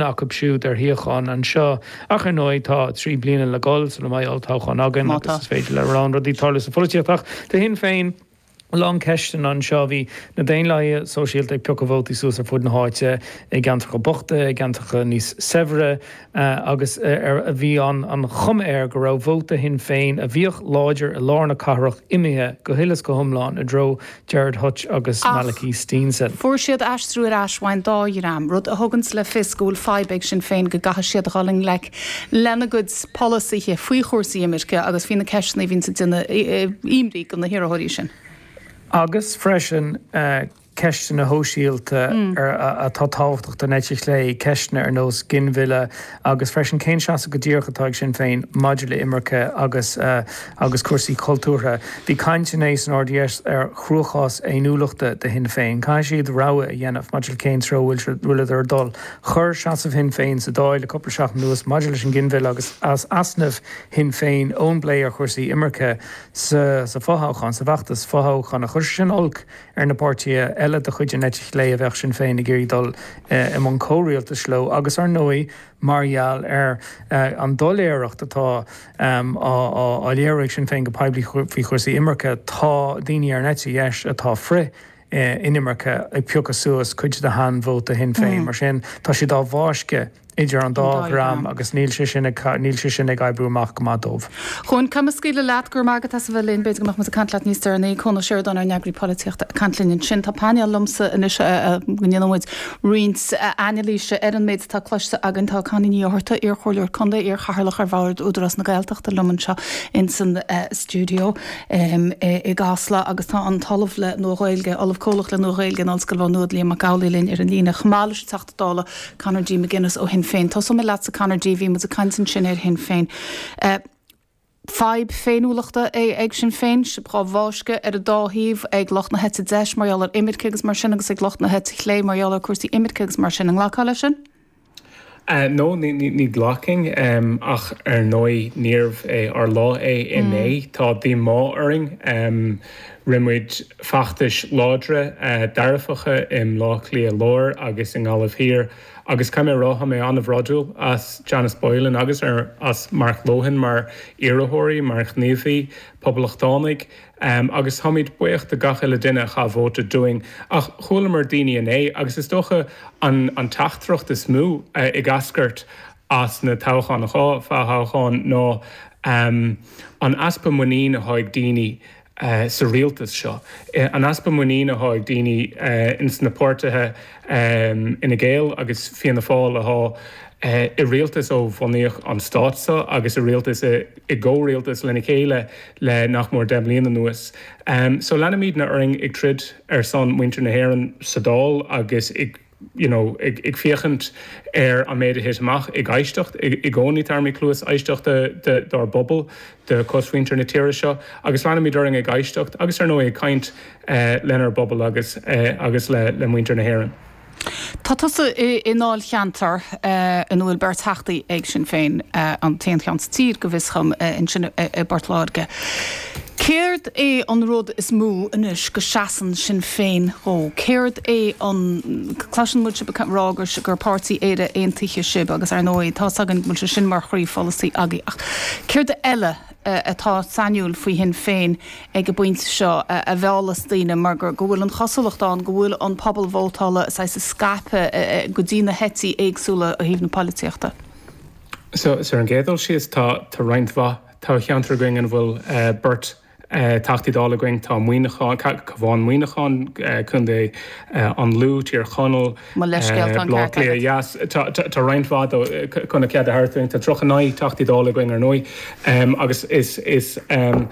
acu siúd ar shuíochán anseo. Ach ar ndóigh, tá trí bliana le dhul sula mbeidh olltoghchán againn agus is féidir le a lán rudaí tarlú sa pholaitíocht. Ach do Shinn Féin, a lán ceisteanna anseo. Bhí na Daonlathaithe Sóisialta ag piocadh vótaí suas ar fud na háite, i gceantracha bochta, i gceantracha níos saibhre, agus bhí an chuma air go raibh vóta Shinn Féin, a bhíodh láidir i lár na cathrach, imithe go huile is go hiomlán i dtreo Gerard Hutch agus Malachy Steenson. Fuair siad aistriú ar ais ón dá dhream, rud a thugann le fios go bhfuil fadhb ag Sinn Féin go gcaithfidh siad a dhul i ngleic lena gcuid polasaithe faoi chúrsaí imirce agus faoi na ceisteanna a bhíonns ag déanamh imní do na hiarrthóirí sin. Agus, freisin, ceisteanna sóisialta atá tábhachtach don eite chlé, ceisteanna ar nós ginmhilleadh, agus freisin cén seasamh go díreach atá ag Sinn Féin maidir le imirce agus agus cúrsaí cultúrtha. Bhí caint inné san RDS ar chruachás féiniúlachta do Shinn Féin. Caithfidh siad rogha a dhéanamh maidir le cén treo a bhfuil siad ag dul. Chuir seasamh Shinn Féin sa Dáil le cúpla seachtain anuas maidir leis an nginmhilleadh agus easnamh Shinn Féin ón bplé ar chúrsaí imirce sa fothoghchán, sa bhfeachtas fothoghcháin. Chuir sé sin olc ar na páirtithe eile de chuid an eite chlé a bheadh Sinn Féin ag iarraidh dul i mbun comhrialtais leo agus, ar ndóigh, mar gheall ar an doiléireacht atá á léiriú ag Sinn Féin go poiblí faoi chúrsaí imirce, tá daoine ar an eite dheis atá frith-inimirce ag piocadh suas cuid de shean-vóta Shinn Féin. Mar sin, tá siad á bhfáisceadh. idir an dá dhream agus níl sé sin ag níl sé sin ag oibriú amach go maith dóibh. Conall, scaoilfidh mé leat, go raibh maith agat as a bheith linn, b'fhéidir go mbeadh muid ag caint leat níos deireanaí. Conall Ó Móráin, ár n-eagarthóir polaitíochta, ag caint linn ansin. Tá painéal liom anois go ndéanfaidh muid roinnt anailíse ar an méid atá cloiste againn. Tá Connie Ní Fhátharta, iarchomhairleoir contae, iarchathaoirleach ar Bhord Údarás na Gaeltachta, liom anseo in san stiúideo i gCasla agus tá an tOllamh le Nua-Ghaeilge, Ollamh Comhlach le Nua-Ghaeilge in Ollscoil Mhá Nuad, Liam Mac Amhlaigh linn ar an líne chomh maith leis an dála Conor D. McGuinness ó Shinn Féin. Tosóidh mé leatsa Conor D. Bhí muid ag caint ansin ar Shinn Féin. Fadhb féiniúlachta ag Sinn Féin, sibh dhá bhfáisceadh ar an dá thaobh, ag lucht na heite deis mar gheall ar imirce agus mar sin agus ag lucht na heite clé mar gheall ar cúrsaí imirce agus mar sin. An nglacfá leis sin? No, ní ghlacfainn. Ach ar ndóigh, níorbh é ár lá é inné. Tá díomá orainn. Rith muid feachtais láidre, dearfacha i mBleá Cliath Láir agus i nGaillimh Thiar agus caithfidh mé a rá, tá mé an-bhródúil as Janice Boylan agus as Mark Lohan mar iarrthóirí, mar ghníomhaithe poblachtánacha agus táimid buíoch do gach uile duine a chaith vóta dúinn. Ach chualamar daoine inné agus is dócha an teachtaireacht is mó ag eascairt as na toghcháin, an dá fhothoghchán ná an easpa muinín atá ag daoine. sa rialtas seo. An easpa muiníne athá ag daoine ins na páirtithe Fhine Gael agus Fianna Fáil athá i rialtas ó bhunaíodh an stát so agus i rialtas, i gcomhrialtas lena chéile le nach mór deich mbliain anuas. So leanfaimídne orainn ag troid ar son muintir na hÉireann sa Dáil agus i. you know ag féachaint ar an méid a thit amach ag éisteacht i gcónaí tabharfaimid cluas éisteachta dár bpobal de cosmhuintir na tíre seo agus leanaimid orainn ag éisteacht agus ar ndóigh ag caint lenár bpobal agus agus le le muintir na hÉireann. Tá tusa i ndáilcheantar ina bhfuil beirt theachtaí ag Sinn Féin, an t-aon cheann sa tír go bhfios dhom, ansin i bPort Láirge. Céard é an rud is mó anois go seasann Sinn Féin dhó? Céard é an. cloiseann muid sibh ag rá gur páirtí Éire Aontaithe sibh agus ar ndóigh tá's againn go bhfuil sé sin mar chroípholasaí agaibh ach céard eile atá sainiúil faoi Shinn Féin ag an bpointe seo a mheallas daoine mar go bhfuil an chosúlacht ann go bhfuil an pobal vótála saghas scaipthe go dtí na heití éagsúla ó thaobh na polaitíochta? Ar an gcéad dul síos tá roinnt mhaith. Tá ceantar againn ina bhfuil beirt Teachtaí Dála againn, tá Muineachán, Cabhán Muineachán, Co. an Lú, Tír Chonaill, Mo leithscéal, tá an ceart agat. Blá Cliath Theas, tá roinnt mhaith acu, chun a cheart a thabhairt dúinn. Tá 39 Teachtaí Dála againn ar ndóigh agus is an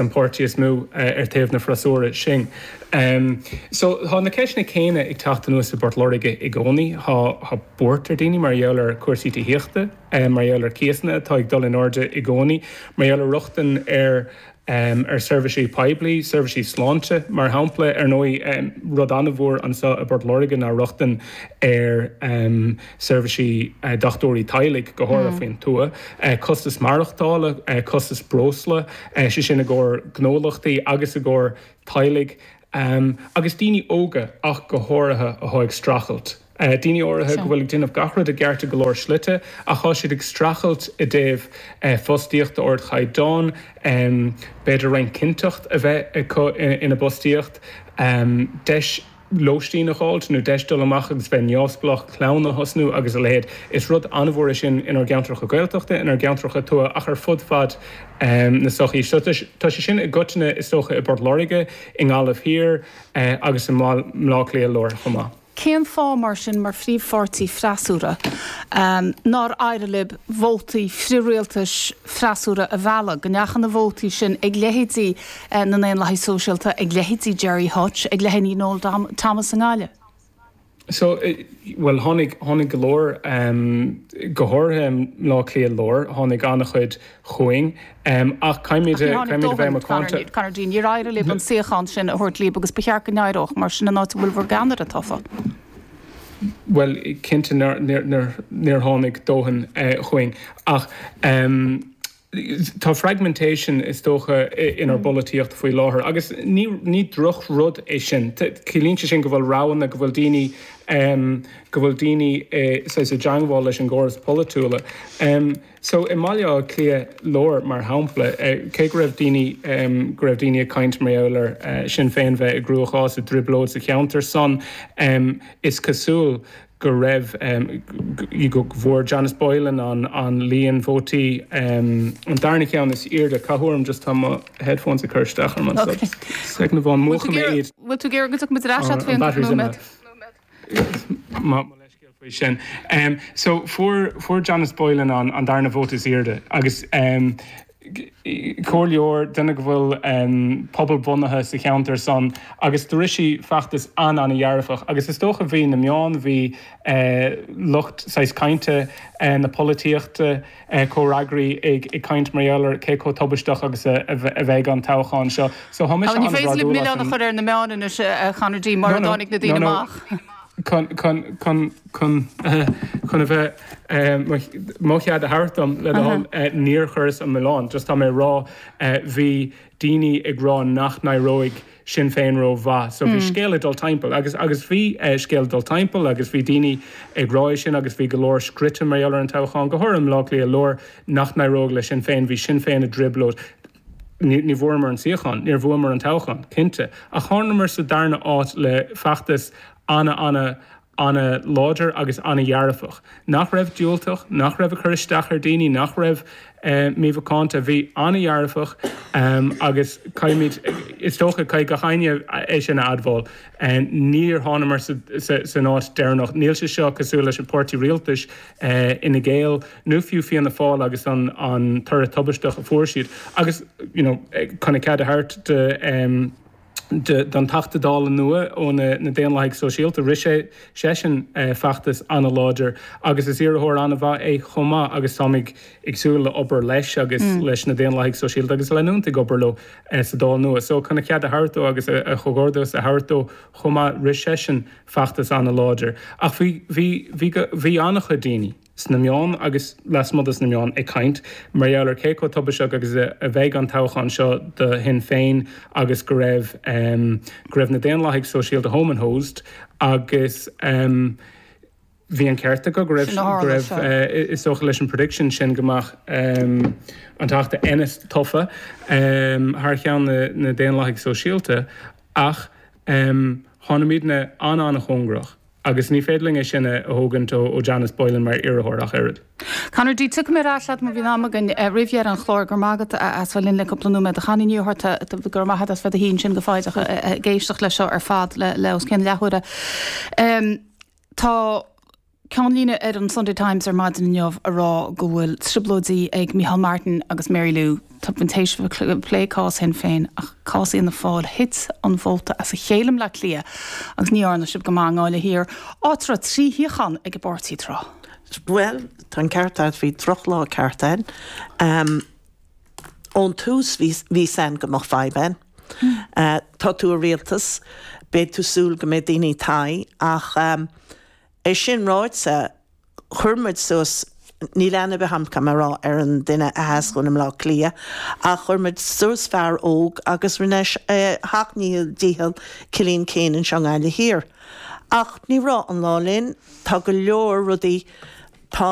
páirtí is mó ar taobh na freasúra sinn. So tá na ceisteanna céanna ag teacht aníos i bPort Láirge i gcónaí. Tá buairt ar daoine mar gheall ar chúrsaí tithíochta. mar gheall ar chíosanna atá ag dul in airde i gcónaí, mar gheall ar rochtain ar ar seirbhísí poiblí, seirbhísí sláinte, mar shampla. Ar ndóigh, rud an-mhór anseo i bPort Láirge ná rochtain ar seirbhísí dochtúirí teaghlaigh, go háirithe faoin tuath, costas maireachtála, costas breosla, sé sin i gcomhair gnólachtaí agus i gcomhair teaghlaigh. Am agus daoine óga ach go háirithe athá ag streachailt. Daoine áirithe go bhfuil ag déanamh gach rud i gceart i go leor slite ach tá siad ag streachailt i dtaobh fostaíocht d'ardchaighdeán, b'fhéidir roinnt cinnteacht a bheith acu ina bpostaíocht, deis lóistín a dh'fháilt nó deis dul amach agus bheith neamhspleách, clann a thosnú agus a leithéid. Is rud an-mhór é sin inár gceantracha Gaeltachta, inár gceantracha tuaithe ach ar fud fad na sochaí seo. Tá sé sin i gcoitinne, is dócha, i bPort Láirge, i nGaillimh Thiar agus i mBaile Átha Cliath Láir chomh maith. Cén fáth, mar sin, mar phríomhpháirtí freasúra, nár éirigh libh vótaí frith-rialtais freasúra a mhealladh, go ndeachaigh na vótaí sin ag leithéidí na nDaonlathaigh Sóisialta, ag leithéidí Gerry Hutch, ag leithéidí Noel Thomas i nGaillimh? So, bhuel, tháinig, tháinig go leor, go háirithe i mBleá Cliath Láir, tháinig an-chuid chugainn, ach caithfimid a, caithfimid a bheith macánta. Conor D, níor éirigh libh an suíochán sin a thabhairt libh agus ba cheart go n-éireodh, mar sin an áit a bhfuil bhur gceannaire tofa. Bhuel, cinnte níor, níor, níor tháinig dóthain chugainn ach. Tá fragmentation, is dócha, inár bpolaitíocht faoi láthair agus ní drochrud é sin. Ciallaíonn sé sin go bhfuil roghanna, go bhfuil daoine, go bhfuil daoine saghas i dteangmháil leis an gcóras polaitiúla. So i mBaile Átha Cliath Láir, mar shampla, cé go raibh daoine, go raibh daoine ag caint mar gheall ar Shinn Féin bheith i gcruachás, i dtrioblóid sa cheantar san, is cosúil go raibh, go bhfuair Janice Boylan an líon vótaí, an darna ceann is airde. Gabh mo phardún just tá mo headphones ag cur isteach orm anso. Sec, na fóin, múchfaidh mé iad. Bhfuil tú ag iarraidh go dtiocfaidh muid ar ais agat féin i gceann nóiméad? Mo leithscéal faoi sin. So fuair Janice Boylan an darna vóta is airde agus comhairleoir, duine go bhfuil pobal bunaithe sa cheantar san agus rith sí feachtas an-ana-dhearfach agus is dócha bhí na meáin, bhí lucht saghas cainte na polaitíochta, comhfhreagraí ag caint mar gheall ar cé chomh tubaisteach agus a bheidh an toghchán seo. So tá mise an-bhrodúil as an. Ní féidir linn milleán a chur ar na meáin anois, a Chonor, murar tháinig na daoine amach. chun a bheith mo chead a thabhairt dom le do thoil, níor chuireas an milleán. Just tá mé ag rá, bhí daoine ag rá nach n-éireoidh le Sinn Féin rómhaith. So bhí scéal ag dul timpeall agus agus bhí scéal ag dul timpeall agus bhí daoine ag rá é sin agus bhí go leor scríte mar gheall ar an toghchán, go háirithe i mBleá Cliath Láir, nach n-éireoidh le Sinn Féin. Bhí Sinn Féin i dtrioblóid. Ní bhfuaireamar an suíochán. Níor bhuamar an toghchán, cinnte, ach tháingamar sa darna háit le feachtas ana-ana-ana-láidir agus ana-dhearfach, nach raibh diúltach, nach raibh ag cur isteach ar daoine, nach raibh mímhacánta. Bhí ana-dhearfach agus caithfimid, is dócha, caithfidh gach éinne é sin a admháil, níor tháingamar san áit deireanach. Níl sé seo cosúil leis an bpáirtí rialtais Fhine Gael. nó fiú Fianna Fáil agus an toradh tubaisteach a fuair siad, agus you know chun a cheart a thabhairt don Teachta Dála nua ó na Daonlathaigh Shóisialta, rith seisean feachtas an-láidir agus is iarrthóir an-mhaith é chomh maith agus táimid ag súil le obair leis agus leis na Daonlathaigh Shóisialta agus leanúint ag obair leo sa Dáil nua. So chun a cheart a thabhairt dó agus comhghairdeas a thabhairt dó chomh maith, rith seisean feachtas an-láidir. Ach bhí an-chuid daoine. sna meáin agus lasmuigh de na meáin ag caint mar gheall ar cé chomh tubaisteach agus a bheidh an toghchán seo do Shinn Féin agus go raibh go raibh na Daonlathaigh Sóisialta home and hosed agus bhí an ceart acu go raibh go raibh is dócha leis an prediction sin go mbeadh an Teachta Ennis tofa thar cheann na Daonlathaigh Sóisialta ach tháinig muidne an-an-chóngarach. Agus ní féidir linn é sin a thógaint ó Janice Boylan mar iarrthóir ach oiread. Conor D, tiocfaidh mé ar ais agat má bhíonn am againn roimh dheireadh an chláir. Go raibh maith agat as bheith linn le cúpla nóiméad. A Chonnie Ní Fhátharta, go raibh maith agat as bheith i do shuí ansin go foighdeach ag éisteacht leis seo ar fad le os cionn leathuaire. Tá ceannlíne ar an Sunday Times ar maidin inniu ag rá go bhfuil trioblóidí ag Micheál Martin agus Mary Lou. Tá muid tar éis a bheith ag plé cás Shinn Féin ach cás Fhianna Fáil, thit an vóta as a chéile i mBleá Cliath agus ní dhearna sibh go maith i nGaillimh Thiar, áit a raibh trí shuíochán ag an bpáirtí tráth. Bhuel, tá an ceart agat, bhí drochlá ceart ann. Ón tús bhí a fhios againn go mbeadh fadhb ann. Tá tú i rialtas, beidh tú ag súil go mbeidh daoine i d'aghaidh ach. É sin ráite, chuir muid suas, níl aithne ar bith agam, caithfidh mé a rá, ar an duine a sheas dhúinn i mBleá Cliath, ach chuir muid suas fear óg agus rinne sé a sheacht míle dícheall, Cillian Keane anseo i nGaillimh Thiar. Ach ní raibh an lá linn. Tá go leor rudaí, tá,